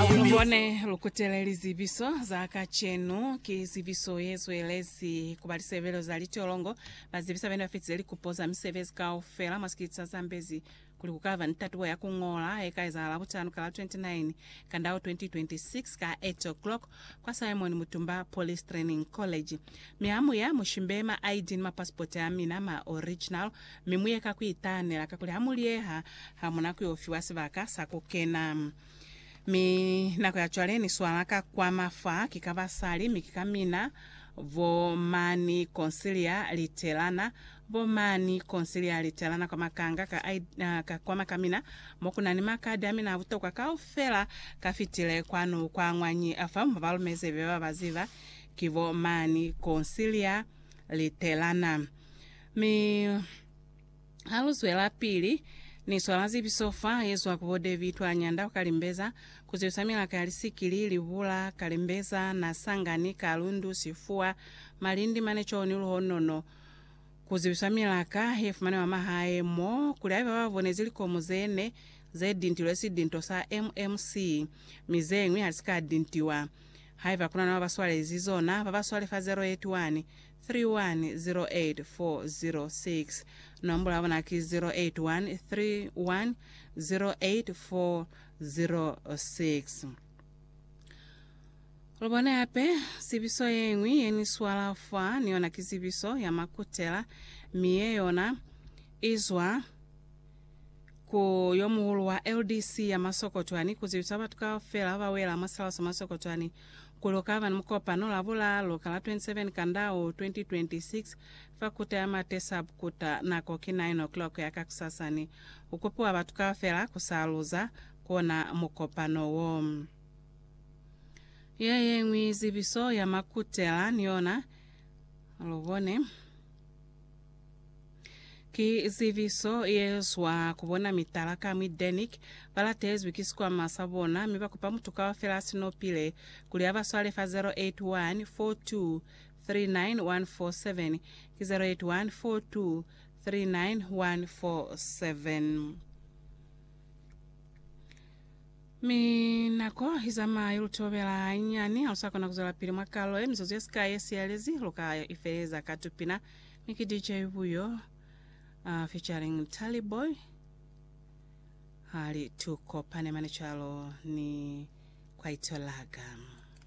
Lubone lukutele lizibiso za kacenu ki zibiso yezwelezi kuba lisebelo za litolongo. Bazibisa bene bafitize likupo za misebezi kaufela mwa sikiliti sa Zambezi kuli kukaba ni tatubo ya kungola yeka ezahala butano kala 29 Kandau 2026 ka 8 o'clock kwa Simon Mutumba Police Training College. Mi hamuya mushimbe ma ID ni ma passport amina ma original mi muye ka kuitanela kakuli hamuliyeha hamuna kuyo fiwa sibaka sa kukena. Mi nako ya cwale ni swala ka kwa mafa, ki ka basali, mi ki ka mina, bo mani Conciliar Literana, bo mani Conciliar Literana kwa makanga ka, I, ka kwa makamina, mo ku na ni makadi a mina a butokwa kaufela. Ka fitile kwanu kwa ngwañi fa mo ba lumeze be ba ba ziba, ki bo mani Conciliar Literana. Mi. Ha lu zwelapili, Ni swala zibiso fa ye zwa ku bo David wa Nyanda ku Kalimbeza, ku zibiso milaka ya lisikili, libula, Kalimbeza, Nasangani, Kalundu, Sifuwa, Malindi, Manechoni, Luhonono, ku zibiso milaka ye fumaneha mwa mahae mo, kuli haiba ba bonezi likomo ze ne ze dintilwe si dinto sa MMC, mi ze ñwi ha li si ka dintiwa. Haiba ku na na ba ba swalezi zona, ba ba swale fa 081 406. Nombulo ya bona ki 0813108406. Lu bone hape zibiso ye ñwi ye ni swala fa, ni yona ki zibiso ya Makutela, mi ye yona i zwa ku yo muhulu wa LDC ya Masokotwani ku zibisa batu kaufela ba wela mwa Salsa Masokotwani Ku lu ka ba ni mukopano Labulaalu ka la 27 Kandau 2026 fa Kuta ya Mate Sub Kuta. Nako ki 9:00 ya kakusasani. Ku kupiwa batu kaufela ku sa luza ku ona mukopano wo. Ye ye ñwi zibiso ya makutela ni yona. Lu bone. Ki zibiso ye zwa ku bona mitala ka mwi Denic. Ba latezwi ki sikwama sa bona mi ba kupa mutu kaufela a si no pile kuli a ba swale fa 081 42 39 147, ki 081 42 39 147. Mi nako i zamaya i lu tobela hanyinyani. Ha lu sa kona ku zwelapili mwa kalo ye, mizuzu ye sikai ye siyelezi lu ka i feleza ka tupina. Mi ki DJ Buyo uh, featuring Tally Boy hali tu kopane mane cwalo ni kwaito laga.